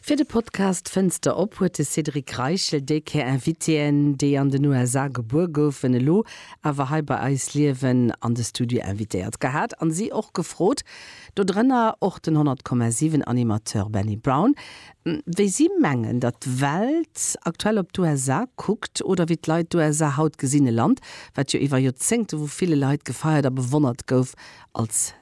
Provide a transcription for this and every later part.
Fir de Podcast Fënster op huet de Cédric Reichel déi Kéier Invitéen, déi an den USA gebuer goufen, elo awer hei bei eis liewen, an de Studio invitéiert gehat a si och gefrot. Do drënner och den 100,7 Animateur Benny Brown. Wéi si mengen, datt d'Welt aktuell op d'USA kuckt, oder wéi d'Leit d'USA haut gesinn, e Land, wat jo iwwer Joerzéngte vu ville Leit gefeiert a bewonnert gouf als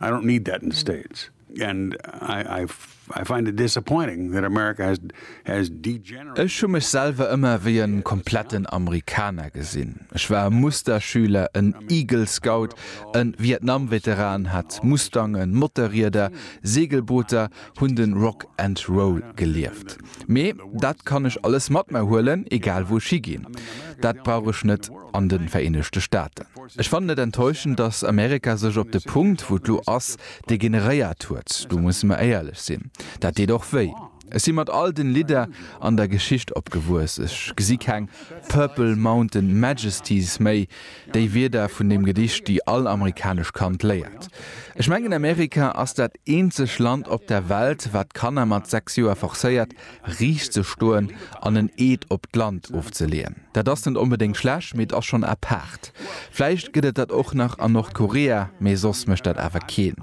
I don't need that in the States. And I, I, I find it disappointing that America has, has degenerated. Ech hu mech selwer ëmmer wéi e kompletten Amerikaner gesinn. Ech war e Musterschüler, en Eagle Scout, e Vietnam-Veteran, hat Mustangen, Motorrieder, Segelbooter, hunn de Rock and Roll gelieft. Mee dat kann ech alles mat mer huelen, egal wou ech higinn. Dat brauch ech net an de Vereenegte Staaten. Ech fannen et enttäuschend, datt Amerika sech op de Punkt, wou et lo ass, degeneréiert huet. Do musse mer éierlech sinn, dat deet och wéi. Ech si mat all den Lidder an der Geschicht opgewuess. Ech gesi keng Purple Mountain Majesties méi. Déi Wierder vun deem Gedicht, déi all amerikanesch Kand léiert. Ech mengen Amerika ass dat eenzeg Land op der Welt, wat d'Kanner mat 6 Joer forcéiert, riicht ze stoen an en Eed op d'Land ofzeleeën. Dat ass net onbedéngt schlecht, mee et ass schonn apaart. Vläicht gëtt et dat och nach an Nordkorea, mee soss mécht dat awer keen.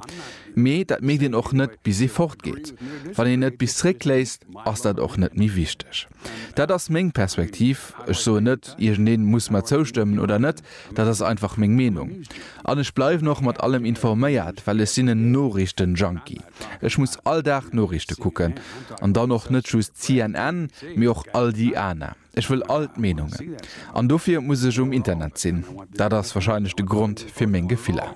Mee dat mierkt een och net, bis ee fortgeet. Wann een et bis zeréckléisst, ass dat och net méi wichteg. Dat ass meng Perspektiv. Ech soen net, iergendee muss mer zoustëmmen oder net, dat ass einfach meng Meenung. An ech bleiwen och mat allem informéiert, well ech sinn en Noriichten-Junkie. Ech muss all Dag Noriichte kucken. An dann och net just CNN, mee och all déi aner. Ech wëll all d'Meenungen. An dofir muss ech um Internet sinn. Dat ass warscheinlech de Grond fir meng Gefiller.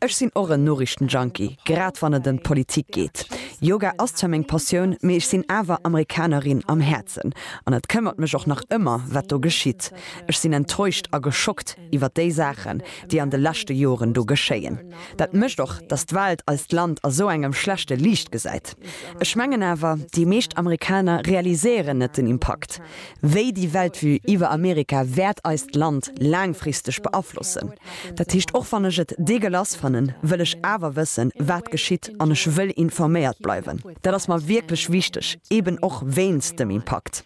Ech sinn och en Noriichtenjunkie, grad wann et ëm d'Politik geet. Yoga ass zwar meng Passioun, mee ech sinn awer Amerikanerin am Häerzen an et këmmert mech och nach ëmmer, wat do geschitt. Ech sinn enttäuscht a geschockt iwwer déi Saachen, déi an de leschte Joren do geschéien. Dat mécht och, datt d'Welt eist Land a sou engem schlechte Liicht gesäit. Ech mengen awer, déi meescht Amerikaner realiséieren net den Impakt, Wéi déi Weltvue iwwer Amerika wäert eist Land laangfristeg beaflossen? Dat heescht, och wann ech et degueulasse fannen, wëll ech awer wëssen, wat geschitt an ech wëll informéiert bleiwen. Dat ass mer wierklech wichteg, eben och wéinst dem Impakt.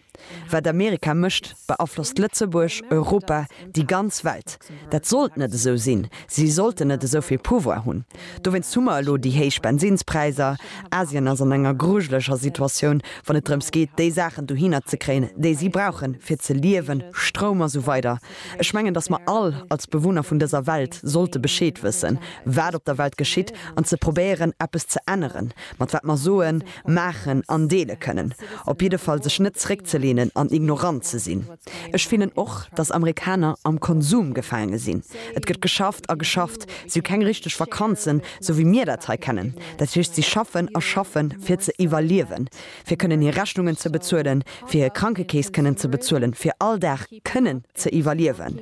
Wat Amerika mécht, beaflosst Lëtzebuerg, Europa, déi ganz Welt. Dat sollt net esou sinn. Si sollten net esou vill Pouvoir hunn. Dowéinst hu mer elo déi héich Bensinspräisser. Asien ass an enger grujeleger Situatioun, wann et drëms geet, déi Saachen dohinner ze kréien, déi si brauchen, fir ze liewen, Stroum a sou weider. Ech mengen, dass mer all als Bewunner vun dëser Welt sollte Bescheed wëssen, wat op der Welt geschitt, an ze probéieren, eppes ze änneren, mat wat mer soen, maachen an deele kënnen. Op jidde Fall sech net zréckzelehnen an ignorant ze sinn. Ech fillen och, datt Amerikaner am Konsum gefaange sinn. Et gëtt geschafft a geschafft. Si hu keng richteg Vakanzen, sou wéi mir dat hei kennen. Dat heescht, si schaffen a schaffen, fir ze iwwerliewen, fir kënnen hir Rechnungen ze bezuelen, fir hir Krankekeess kënnen ze bezuelen, fir all Dag kënnen ze iwwerliewen.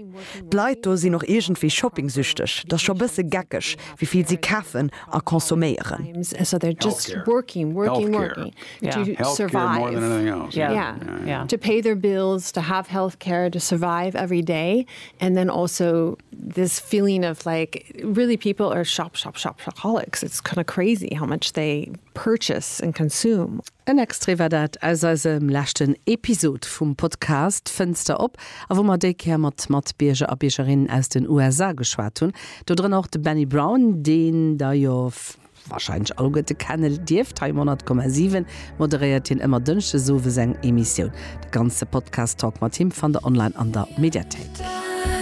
D'Leit do sinn och iergendwéi shopping-süchteg. Et ass scho bësse geckeg, wéi vill si kafen a consomméieren. to survive, to pay their bills, to have health care, to survive every day and then also this feeling of like really people are shop shop shop shopaholics, it's kind of crazy how much they purchase and consume. En Extrait war dat aus eisem leschten Episod vum Podcast Fënster op a wou mer déi Kéier mat Matbierger a Biergerinnen aus den USA geschwat hunn, dodrënner och de Benny Brown, deen der jo, Wahrscheinlech all guerte kenne dierft. Hei um 100,7 moderéiert hien ëmmer Dënschdes owes eng Emissioun. De ganze Podcast Talk mat him fannt der online an der Mediathéik.